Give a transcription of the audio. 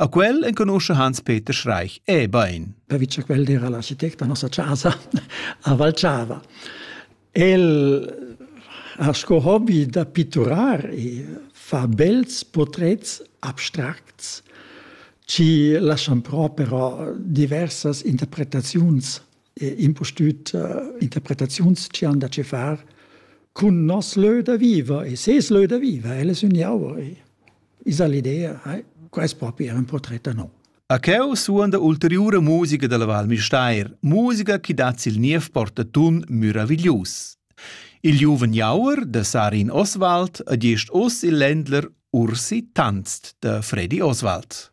A quel enconuscha Hans-Peter Schreich e bain. Pervi che quel era l'architect da nossa casa a Valchava. El ha sco hobby da pitturar e fa bels portrets abstracts ci lascian però però diversas interpretaziuns e impustüt uh, interpretaziuns ci han da ce far cun nos lö da viva e ses lö da viva, el es ün jauer. E Esa l'idea, quest propi era un portret da no. A cheu suonda ulteriura musica dalla Val Müstair, musica chi dat sil niev portatun meraviglius. Il giuven Jauer da Sarin Oswald adest oz il Ländler Ursi tanzt da Freddy Oswald.